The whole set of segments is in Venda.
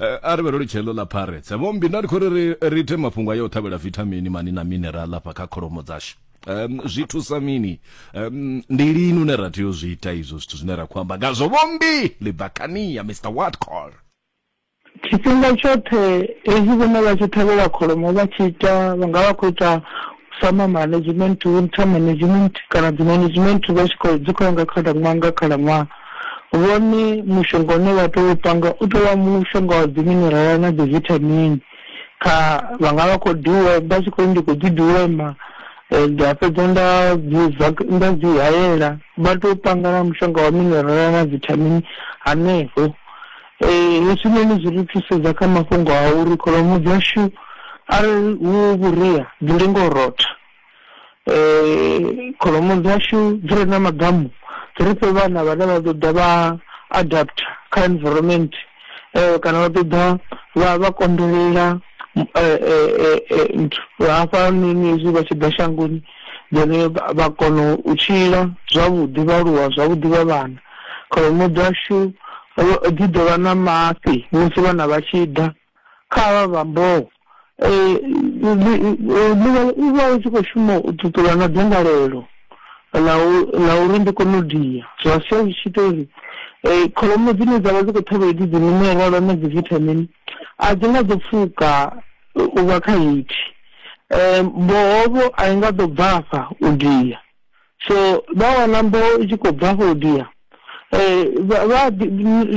Eh, a ri vhe ro litsha heḽo ḽa pirates vho mbi nda ndi khou ri ri ri ite mafhungo a yo ṱhavhela vithamini mani na mineral afha kha kholomo dzashu um zwi thusa mini um ndi lini une ra tea u zwi ita izwo zwithu zwine ra khou amba ngazwo vho mbi libakania mr watcall tshifhinga tshoṱhe hezwi vhone vha tshi ṱhavhela kholomo vha tshi ita vha nga vha khou ita summer management winter management kana dzi management vha tshi khou dzi khou ya nga khalaṅwaha nga khalaṅwaha Vhone mushonga une vha tea u panga u tea u vha mushonga wa dzi minerala na dzi vithamini kha vha nga vha khou diwe vha tshi khou ri ndi khou ḓi diwema nda fhedza nda dzi zwa nda dzi hayela vha tea u panga na mushonga wa minerala na vithamini hanefho. Hezwinoni zwi ri thusedza kha mafhungo a uri kholomo dzashu arali hu vhuria dzi lenga u rotha. um kholomo dzashu dzi re na maḓamu dzi ri fhe vhana vhane vha ḓo ḓa vha adapter kha environment um kana vha ḓo ḓa vha vha konḓelela nthu hafha noni hezwi vha tshi ḓa shangoni then vha kona u tshila zwavhuḓi vha aluwa zwavhuḓi vha vhana kholomo dzashu dzi ḓo vha na mafhi musi vhana vha tshi ḓa kha avha vha mboho. Ḽivhalo i vha i tshi khou shuma u ṱuṱula na dzangalelo ḽa uri ndi kone u dia, zwa sia zwi tshi ita uri kholomo dzine dza vha dzi khou ṱhavha hedzi dzi minerala na dzi vithamini a dzi nga ḓo pfuka u vha kha heyi. Mboho vho a i nga ḓo bvafha u dia so vha wana mboho i tshi khou bva afho dia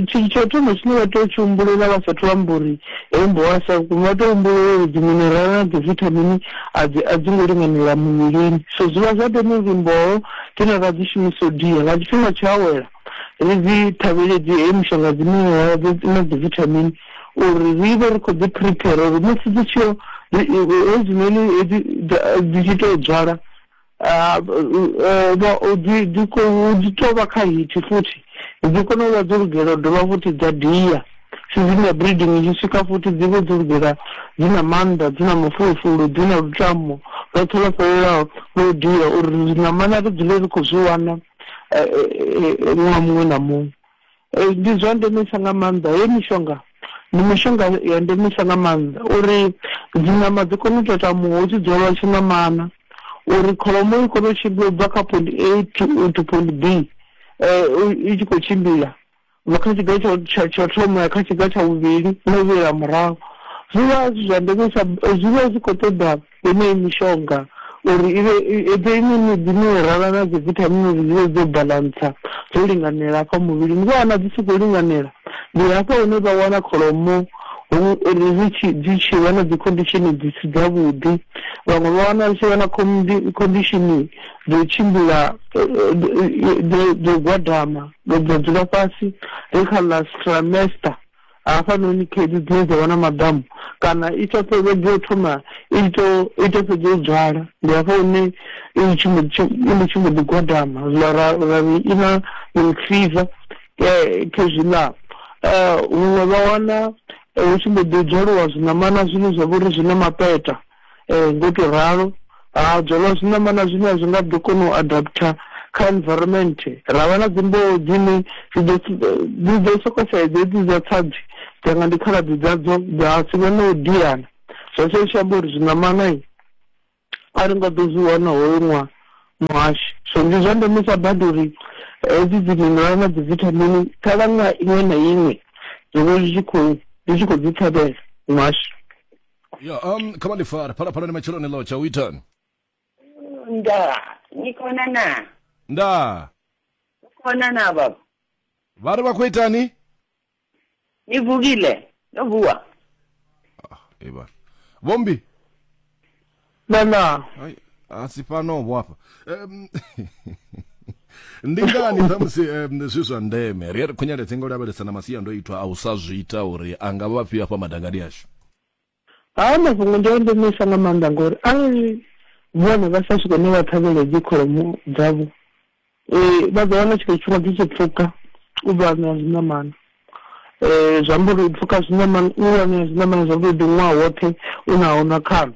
tsho thoma tshine vha tea u tshi humbulela vha sathu amba uri heyi mboho a sa vhukuma vha tea u humbulela uri dziminerala na dzivithamini a dzi a dzi ngo linganela muvhilini so zwi vha zwa ndeme uri mboho dzine ra dzi shumisa u dia nga tshifhinga tsho awela ri dzi ṱhavhele dzi heyi mishonga dziminerala na dzivithamini uri ri vhe ri khou dzi prepare uri musi dzi tshiyo hezwinoni hedzi dzi tshi tou dzwala Ah, o vha o dzi dzi khou dzi tou vha kha hiti futhi dzi kona u vha dzo lugela u dovha futhi dza dia season ya breeding i tshi swika futhi dzi vhe dzo lugela dzi na maanḓa dzi na mafulufulu dzi na lutamo lwoṱhe lwo fhelelaho lwa u dia uri ṋamana ri dzule ri khou zwi wana eh, eh, eh, ṅwaha muṅwe na muṅwe Ee, ndi zwa ndemesa nga maanḓa. Heyi mishonga ndi mishonga ya ndemesa nga maanḓa uri dziṋama dzi kone u tatamuwa hu tshi dzwalwa tshiṋamana uri kholomo i kone u tshimbila u bva kha point A to to point B i tshi khou tshimbila u bva kha tshiga tsha tsha tsha u thoma u ya kha tshiga tsha vhuvhili na u vhuyela murahu. Zwi vha zwi zwa ndemesa zwi vha zwi khou ṱoḓa. Yeneyi mishonga uri i vhe i ḓe i na dzi minerala na dzi vithamini uri dzi vhe dzo balantsa dzo linganela hafha muvhilini vha wana dzi si khou linganela ndi hafha hune vha wana kholomo ri tshi dzi tshi vha na dzi condition dzi si dza vhuḓi vhaṅwe vha wana ri tshi vha na condition dzo tshimbila dzo gwadama dzo dzula fhasi ri kha ḽa stramester. hafhanoni khaedu dzine dza vha na maḓamu kana i sa fhedzi yo thoma i to i to fhedza u dzwala ndi hafha hune i tshi mbo i mbo tshi mbo ḓi gwadama zwiḽa ra ra ri i na yellow fever kha zwiḽa huṅwe vha wana hu tshi mbo ḓi dzwaliwa zwiṋamana zwine zwa vha uri zwi na mapeṱa Ee, ngo tou ralo. Ha dzwalwa zwiṋamana zwine zwi nga ḓo kona u adapter kha environment. Ra vha na dzimboho dzine dzi ḓo dzi ḓo sokou sa hedzi hedzi dza tsadzi dza nga ndi khaladzi dzadzo dza si vhe na u diana. Zwa sia zwi tshi amba uri zwiṋamana a ri nga ḓo zwi wana hoyu ṅwaha muhashi. So ndi zwa ndemesa badi uri hedzi dzi mineral na dzi vithamini khalaṅwaha iṅwe na iṅwe zwi vhe zwi tshi khou zwi tshi khou dzi ṱhavhela muhashi. ya um khamalifara phalaphalani matsheloni lo tsha u itani Nda, ni khona na? nda Ni khona na baba? vha ri vha khou itani Ni vukile? No vuwa? eba vhombi nana Hai, asi pano vho hafha Em, ndi ngani ṱhamusi em, zwi zwa ndeme ri a ri khonyela dzinga u lavhelesa na masiandoitwa a u sa zwi ita uri a nga vha afhio afha madangani ashu haa mafhungo ndi a ndemesa nga maanḓa ngori arali vhone vha sa swike ne vha ṱhavhele dzi kholomo dzavho Ee, vha ḓo wana tshika tshifhinga dzi tshi pfuka u ḓo anea zwiṋamana um zwi amba uri u pfuka zwiṋamana u anea zwiṋamana zwi amba uri ndi ṅwaha woṱhe u na ho na khano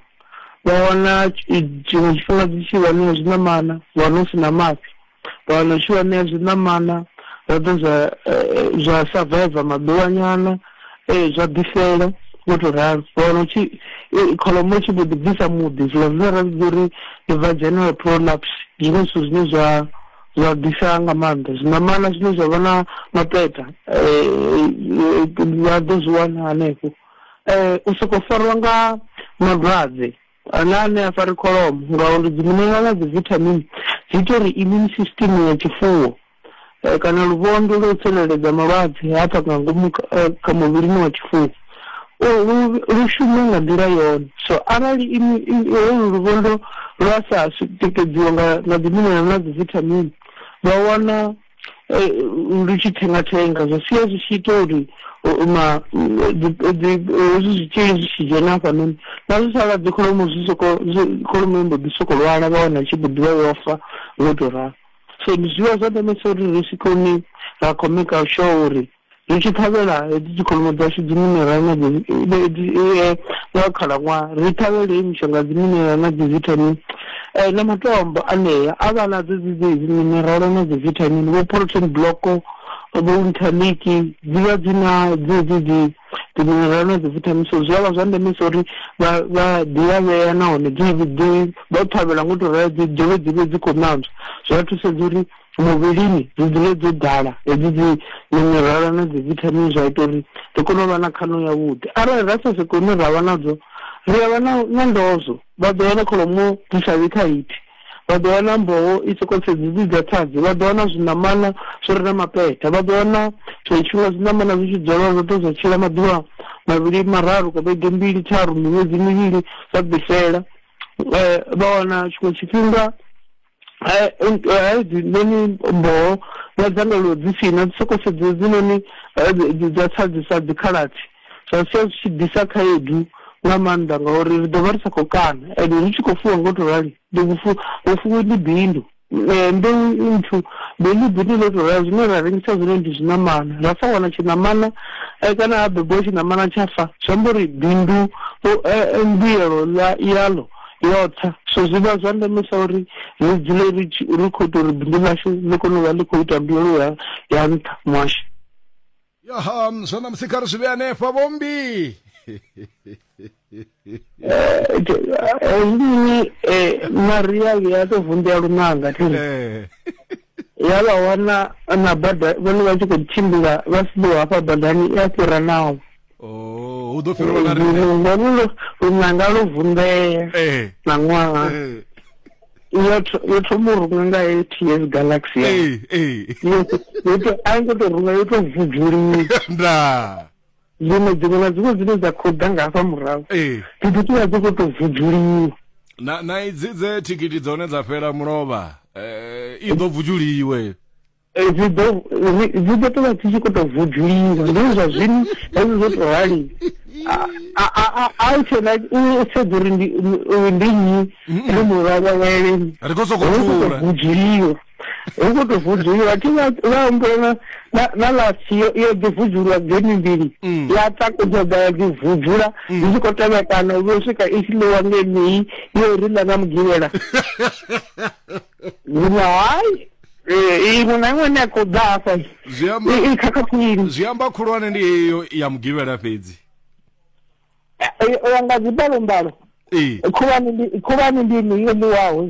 vha wana tshiṅwe tshifhinga dzi tshi wanea zwiṋamana wa no si na mafhi vha wana u tshi wanea zwiṋamana zwa ḓa zwa zwa survive maḓuvhanyana Ee, zwa ḓi fhela, vho tou ralo. Vha wana hu tshi, kholomo i tshi mbo ḓi bvisa muḓi, zwiḽa zwine ra vhidza uri ndi vaginal prolapse. Ndi zwone zwithu zwine zwa zwa ḓisa nga maanḓa zwiṋamana zwine zwa vha na mapeṱa vha ḓo zwi wana hanefho. U sokou fariwa nga malwadze. Ana ane a fari kholomo ngauri dzi mineral na dzi vithamini dzi ita uri immune system ya tshifuwo eh, kana luvhondo lwo tsireledza malwadze hafha nga ngomu eh, kha muvhilini wa tshifuwo lu shume nga nḓila yone so arali holu luvhondo lwa sa tikedziwa nga dzi mineral na dzi vithamini vha wana lu tshi thenga thenga zwi sia zwi tshi ita uri ma hezwi zwitzhili zwi tshi dzhena hafhanoni na zwi sala dzi kholomo zwi soko kholomo mbo ḓi soko lwala vha wana tshi khou ḓivha yo fa wo to ralo so ndi zwivha zwa ndemesa uri ri si koni ra khou maker sure uri ri tshi ṱhavhela hedzi dzikholomo dzashu dziminerala na eh, nga khalaṅwaha ri ṱhavhele hei mishonga dziminerala na dzivitamin um na matombo anea a vha nadzo dzidzi minerala na dzivitamin vho protein block vho interlink dzi vha dzi na dzedzi dzi dziminerala na dzivitamin so zwi a vha zwa ndeme sa uri vha ḓilavhea nahone vha u ṱhavhela ngo to rela dzi dovhe dzi vhe dzi khou nantswa zwi a thusedza uri muvhilini dzi dzule dzo ḓala hedzi dzi minerala na dzi vithamini zwa ita uri ri kone u vha na khaṋo yavhuḓi arali ra sa soko hune ra vha nadzo ri a vha na na ndozwo vha ḓo wana kholomo dzi sa vhi kha hithi vha ḓo wana mboho i soko sedzi dzi dza tsadzi vha ḓo wana zwiṋamana zwi re na mapeta vha ḓo wana zwa tshifhinga zwiṋamana zwi tshi dzolwa zwa ḓo zwa tshila maḓuvha mavhili mararu ka vhege mbili tharu miṅwedzi mivhili zwa ḓifela um vha wana tshiṅwe tshifhinga hai hai dzi noni mboho na dzangalelo dzi si na dzi soko sedza dzi noni dza tsadzisa dzi khalathi zwa sia zwi tshi ḓisa khaedu nga maanḓa ngauri ri ḓo vha ri sa khou kana ende ri tshi khou fuwa ngo to rali ndi vhufu vhufuwi ndi bindu mbeu nthu bindu bindu ḽo to rali zwine ra rengisa zwine ndi zwiṋamana ra sa wana tshiṋamana kana ha bebiwa tshiṋamana tsha fa zwi amba uri bindu mbuyelo ḽa yaḽo yotsa so zwi vha zwa ndemesa uri ri dzule ri ri khou ita uri bindu ḽashu ḽi kone u vha ḽi khou ita mbuyelo ya ya nṱha muhasho yaha zwa ṋamusi kha ri zwi vhe hanefha vhombi hezwinoni eh, eh, maria vhuya a tou vunḓea lunanga thiri eh. ya vha wana na bada vhone vha tshi khou tshimbila vha siḓiwa hafha badani i a fhira naho oh, hu ḓo fhirwa na riṋe lunanga lwo vunḓea eh. na ṅwaha eh. yo thoma u runga nga eight years galaxy eh, a ngo to runga yo to vuvuliwa zwino dziṅwe na dziṅwe dzine dza khou ḓa nga hafha murahu ee dzithu dzi vha dzi khou tou vudzuliwa na na idzi dze thikhithi dza hone dza fhela mulovha eh, i ḓo bvujuliwe Eh, dzi ḓo ri- dzi ḓo tou vha dzi tshi khou tou vudzuliwa ndi zwa zwino hezwi zwo tou rali A- a- a- a- a u tshena u sedza uri ndi u- ndi nnyi ri mulavheleni ri khou sokou hu khou tou thula vudzuliwa hu khou tou vudzuluwa thi vha humbula na na na last yo yo ḓi vudzuluwa game mbili mm. ya takudza dza ya ḓi vudzula mm. ndi tshi khou tevhekana u vho swika i tshi ḽiwa ngenei yo ri ḽa na mugivhela zwino hayi eh, iṅwe na iṅwe ne a khou ḓa hafha i khakhakhulini zwi amba khulwane ndi heyo ya mugivhela fhedzi eh, eh, u ya nga dzimbalombalo khulwane ndi khulwane ndi ine yo ḽiwaho